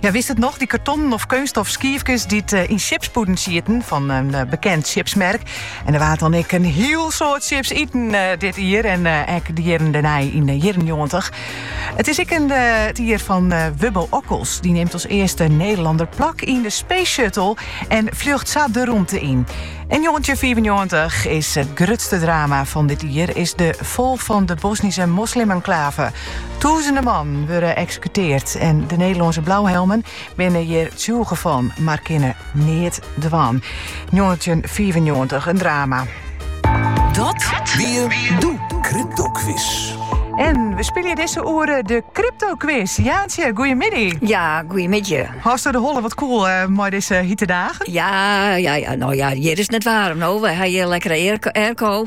Ja, witst it noch, dy kartonnen of keunststof skiefkes dy't yn sjipspûden sieten fan in bekend sjipsmerk. En der waard dan ek in hiel soad sjips iten dit jier en ek de jierren dêrnei yn de jierren njoggentich. It is ek in it jier fan Wubbo Ockels. Dy nimt as earste Nederlander plak yn de Space Shuttle en fljocht sa de rûmte yn. Yn njoggentjinfiifennjoggentich is it grutste drama fan dit jier is de fal fan de Bosnyske moslimenklave. Tûzenen mannen wurde eksekuteard en de Nederlânske blauhelmen binne hjir tsjûge fan, mar kinne neat dwaan. 1995 in drama. Dat wie doe Crypto Quiz. En we spylje dizze oere de Crypto Quiz. Jantsje, goeiemiddei. Ja, goeiemiddei. Hast der de holle wat koel mei dizze hite dagen? Ja, ja, ja, no ja, hjir is 't net waarm. No, we ha hjir lekkere airco.